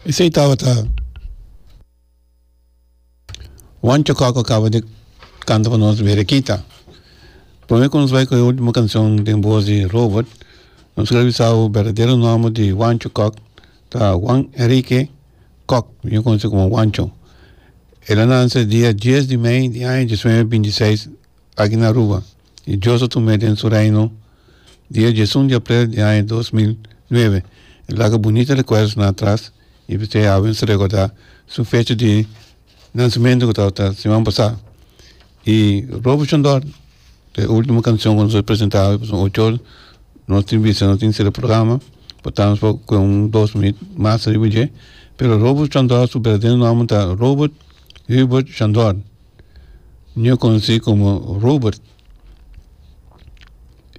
Esei tabata Juancho Coco a caba di canta pa nos Berekita. Prome cu nos bai cu e ultimo cancion den voz di Robert nos quier bisa bo berdadero nomber di Juancho Coc ta Juan Enrique Coc miyor conoce como Juancho. El a nance dia dies di mei di aña dies mil novecientos binti seis aki na Aruba. i Dios a tum'é den su Reino di e djesun di aprel di aña dos mil nuebe. E laga bunita rekuerdonan atras i p'esei awe nos ta rekordá su fecha di nansementu ku tabata siman pasá. I Robert Shondorp, ta e ultimo kanshon ku nos a presentá awe pasobra ocho or nos tin bisa nos tin sera programa pa ta nos ku e un dos minüt mas ariba dje, pero Robert Shondorp su berdadero nòmber ta Robert Hubert Shondorp. Nio conoci como Robert.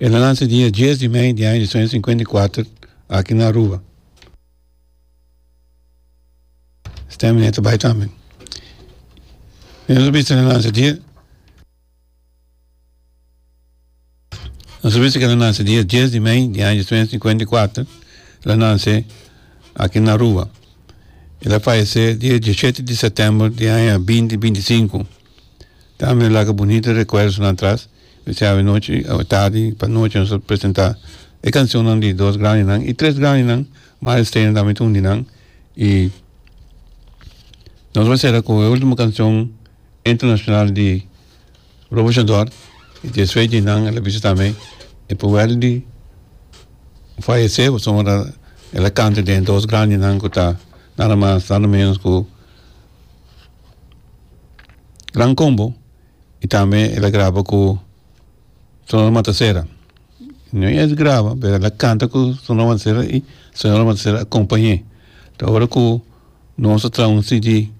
El a naci dia dies di mei di aña di suenta sincuenta y cuater aki na Aruba. Stanley ta bai tambe. Nos a bisa el a naci dia. Nos a bisa ke el a nanse dia dies di mei di aña sesenta i sinkuenta i kuater, el a nanse aki na Aruba. El a fayesé dia diashete di sètèmber di aña binti binti sinku. Tambe nos laga bunita rekuerdonan atras, bisai awanochi, awatardi, panochi nos a presentá e kanshonnan di dos grandinan i tres grandinan, Mario Stayner tambe ta un di nan i nos a sera ku e último kanshon internashonal di. Robuchador y di esfei di nan el a bisa tambe e pueblo di fayece pasobra el a canta den dos grandi nan cu ta nada mas nada menos cu gran combo y tambe el a graba cu sonora matasera no es graba pero el a canta cu sonora matasera y sonora matasera a acompañe ta ora cu nos ta traha un cd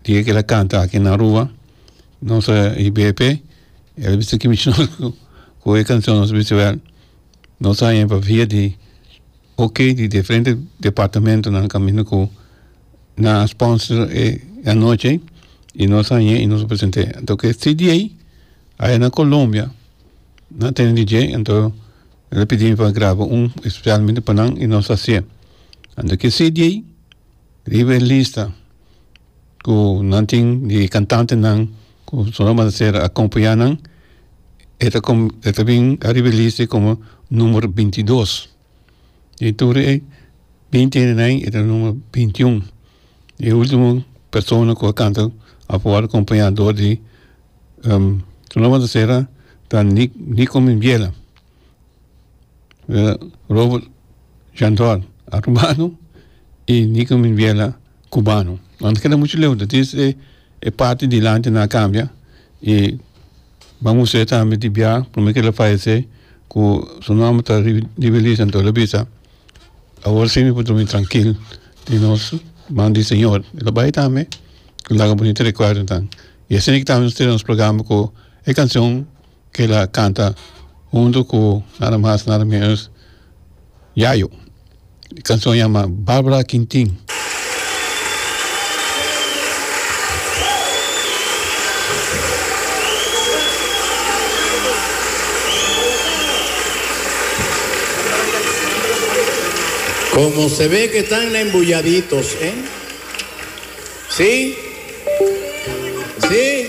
Di e keda kanta aki na rua nos a hibe p'e el a bisa kimisha nos ku e kanshon nos a bisa wèl nos a haña pa via di ok di diferente departamentonan kaminda ku nan a sponsor e anochi i nos a haña i nos a present'é anto ke cda aya na colombia nan a tene di dje anto el a pidi mi pa graba un espesialmente pa nan i nos a hasié anto ke cda. Riba e lista cu nan tin di cantantenan cu Sonora Matancera a compaya nan e ta com e ta bin ariba e lista como numero binti dos den tur e binti hende na ain e ta numero binti un y e ultimo persona cu a canta afor acompaya door di Sonora Matancera ta Nico Minbiela. Robert Shantor arubano y Nico Minbiela cubano lo anto keda mucho leu ta tin esei e parti dilanti nan a cambia y ban use tambe di bia prome ker lo fayece cu su nomber ta Rivelisa anto lo bisa awor si mi por durmi trankil tin nos man di señor y lo bay tambe cu laga bunita recuerdonan y esei tambe nos trae nos programa cu e cancion Kila a kanta huntu ku nada mas nada menos Yayo. E kanson a yama Barbara Quintin. Como se ve que tan embuyaditos, eh? Sí? Sí?